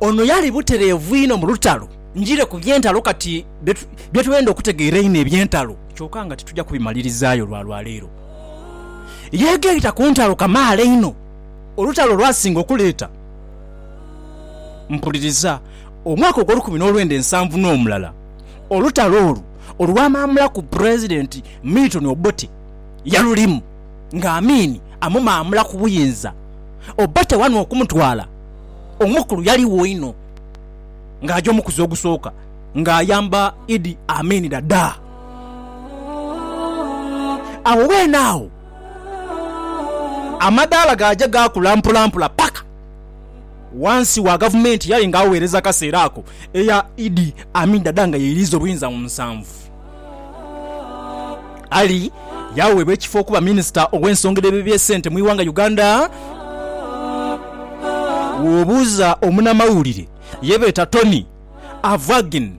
Ono yali butereevu inho mu lutalo. Njire ku by'entalo kati, bye twenda okutegeera einho eby'entalo, kyoka nga tituja kubimalirizaayo lwa lwa leero. Yeegaita ku ntalo kamaala inho, olutalo lw'asinga okuleeta, mpuliriza, omwaka ogw'olukumi n'olwenda ensanvu n'omulala, olutalo olwo olwamaamulaku Pulezidenti Milton Obote yalulimu. nga Amini amumaamula ku buyinza Obote wano okumutwala, omukulu yaligho inho nga aja omukuzi ogusooka nga ayamba Idi Amini Dada. Agho weene agho amadaala gaaja gaakula mpolampola paka ghansi wa gavumenti eyali nga agheereza akaseera ako eya Idi Amini Dada nga yeiriiza obuyinza mu nsanvu. Ali yaweebwa ekifo okuba minisita ow'ensonga edh'eby'esente mu ighanga Uganda. Bw'obuuza omunamawulire ye beeta Tony Avagin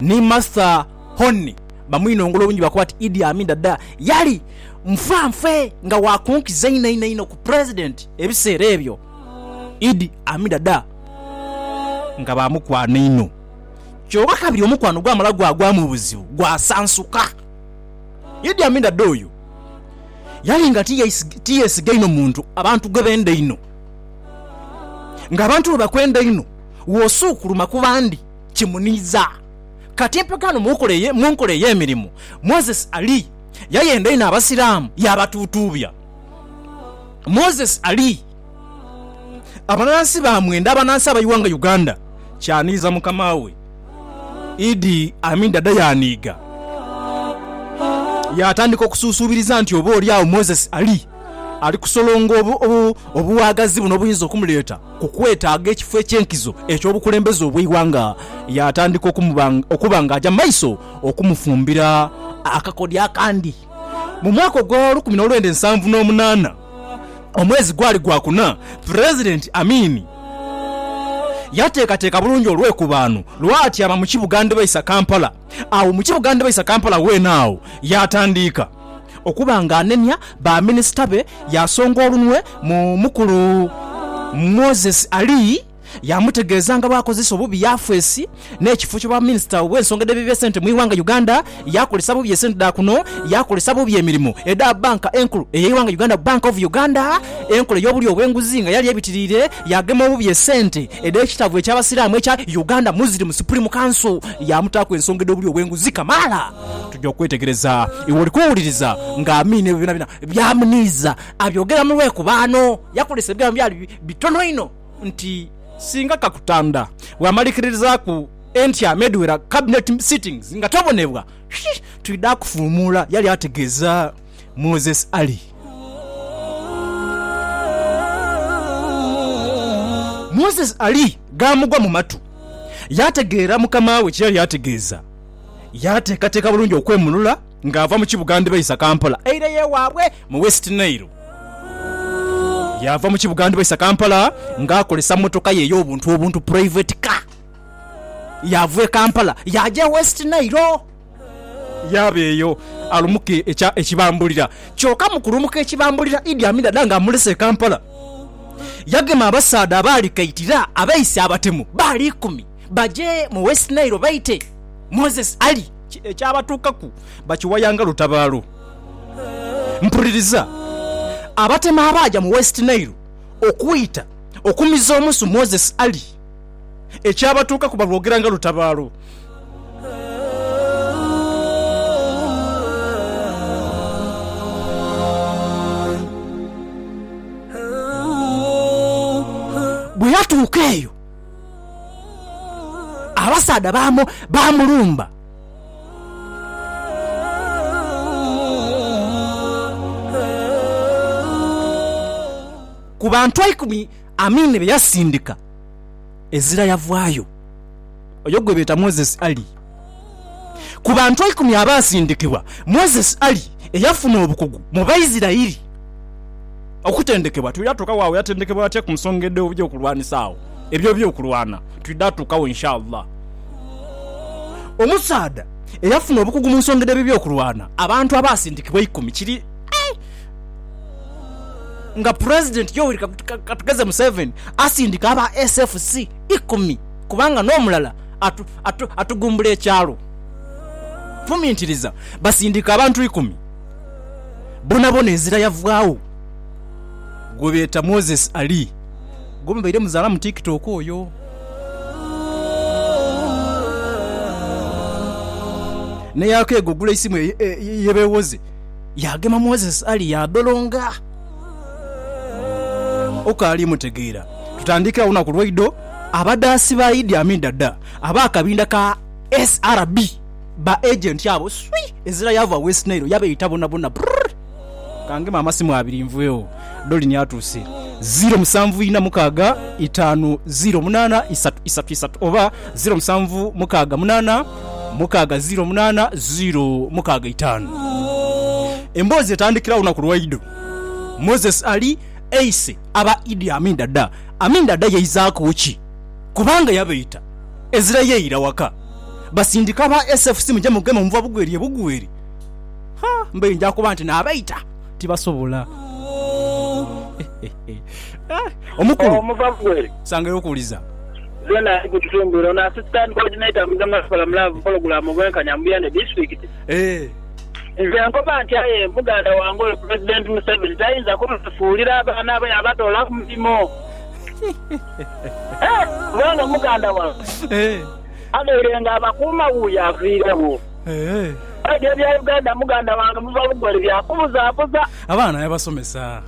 ni Martha Hone bamwinongola obungi bakoba nti Idi Amin Dada yali nfanfe nga wa kunkiza inho inho inho ku Pulezidenti ebiseera ebyo. Idi Amin Dada nga ba mukwano inho. Kyoka kabiri omukwano gwamala gwagwa mu buzibu, gwasansuka. Idi Amin Dada oyo yali nga tiyesiga inho muntu, abantu gwe benda einho. Ng'abantu bwe bakwenda einho, w'osuukuluma ku bandi kimuniiza. Kati empaka eno mu nkola ey'emirimu, Moses Ali yayenda inho Abasiraamu yaabatuutuubya. Moses Ali. Abanansi ba mwenda abanansi aba iwanga Uganda kyaniiza mukama we Idi Amin Dada yaaniiga yaatandika okusuusuubiriza nti oba oli agho Moses Ali ali kusolonga obuwagazi buno obuyinza okumuleeta ku kwetaaga ekifo eky'enkizo eky'obukulembeze obw'eiwanga yaatandika okuba ng'aja maiso okumufumbira akakodyo akandi. Mu mwaka ogwa lukumi n'olwenda nsanvu n'omunaana, Omwezi gwali gwa kuna, Pulezidenti Amin yateekateeka bulungi olwekubaano lw'atyama mu kibuga ndhibaisa Kampala. Agho mu kibuga ndhibaisa Kampala weene agho yaatandiika okuba ng'anenia ba minisita be, yaasonga olunwe mu mukulu Moses Ali. Yaamutegeeza nga bw'akozesa obubi Yafeesi n'ekifo ky'obwaminisita obw'ensonga edh'ebibi esente mu ighanga Uganda, yaakozesa bubi esente dha kuno, yaakozesa bubi emirimo edha Bbanka Enkulu ey'eighanga Uganda, Bank of Uganda, enkola ey'obulyo obw'enguzi nga yali ebitiriire, yaagema obubi esente edh'ekitabo eky'Abasiraamu ekya Uganda Muslim Supreme Council, yaamutaaku ensonga edh'obulyo obw'enguzi kamaala. Tugya okwetegereza iwe oli kuwuliriza nga Amin ebyo byonabyona by'amuniiza abyogera mu lwekobaano. Yakozesa ebigambo byali bitono inho. nti singa Kakutanda bw'amalikirizaaku entya n'edhwera Cabinet sittings nga tabonebwa, twidha kufuumuula, yali ategeeza Moses Ali. Moses Ali gaamugwa mu matu, yaategeera mukama we kye yali ategeeza, yaateekateeka bulungi okwemulula. ng'ava mu kibuga ndhibaisa Kampala eireyo ewaabwe mu West Nile. Yaava mu kibuga ndhibaisa Kampala ng'akozesa mmotoka ye ey'obuntu obuntu, private car. Yaava e Kampala yaaja e West Nile. Yaaba eyo alumuke ekya ekibambulira. Kyoka mu kulumuka ekibambulira Idi Amin Dada ng'amulese e Kampala, yagema abasaadha abaali kaitira abeise abatemu baali ikumi baje mu West Nile baite Moses Ali. Ki ekyabatuukaku? Bakiwayanga lutabaalo. Mpuliriza. Abatema abaaja mu West Nile okwita okumiza omusu Moses Ali, ekyabatuukaku balwogeranga lutabaalo. Bwe yatuuka eyo. Abasaadha baamulumba. Ku bantu eikumi Amini be yasindika, Ezira yavaayo, oyo gwe beeta Moses Ali. Ku bantu eikumi abaasindikibwa, Moses ali eyafuna obukugu mu Baisiraeli. Okutendekebwa. Twidha tuukagho agho yatendekebwa atya ku nsonga edh'okulwanisa agho ebyo eby'okulwana? Twidha tuukagho Insha Allah. Omusaadha eyafuna obukugu mu nsonga edh'ebyo eby'okulwana. Abantu abaasindikibwa eikumi kiri nga Pulezidenti Yoweri Kaguta Katugeze Museveni asindika aba SFC ikumi kubanga n'omulala, atugumbula ekyalo. Fumintiriza, Basindika abantu ikumi, bonabona enzira yavwagho. Gwebeeta Moses Ali, gwemubaire muzaala mu tiktok oyo. Neyakeega ogula eisimu ye bewoze, yagema Moses Ali yadholonga. Okaali mutegeera? Tutandiikira agho lunaku lwaidho. Abadhaasi ba Idi Amin Dada ab'akabinda ka SRB, ba agenti abo swii! Ezira yaava West Nile yabeeta bonabona. Brrrr! Ka ngeme amasimu abiri nvughewo. Dolini atuuse. Ziiro musanvu ina mukaaga itaanu ziiro munaana isatu isatu isatu oba ziiro musanvu mukaaga munaana. mukaaga ziiro munaana ziiro mukaaga itaanu. Emboozi etandikira olunaku lwaidho Moses Ali aise aba Idi Amin Dada. Amin Dada yaizaaku ki? Kubanga yabaita ezira yaira waka basindika aba SFC muje mugeme omuva bugweri ebugweri. Ha! Mbaire nja kuba nti naabaita tibasobola. Omukulu, sangayo okuwuliza. Zena ali ku kitundu eno. Ono Assistant Coordinator mu Zonal Forum Love Pologulaamu Obwenkanya mu Buyende Disitulikiti. Nze nkoba nti aye muganda wange oyo Pulezidenti Museveni tayinza kubefuulira abaana be yabatoola ku mirimo. Kubanga muganda wange abaire nga abakuuma wuuyo aviiregho. Aye ebya Uganda muganda wange muva bugole bya kubuzabuza. Abaana yabasomesa.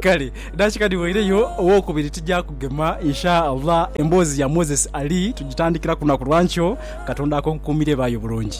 Kale dakika dhiweireyo owokubiri tija kugema Insha Allah. Emboozi ya Moses Ali tugitandikira ku lunaku lwa nkyo. Katonda akonkukuumire baayo bulungi.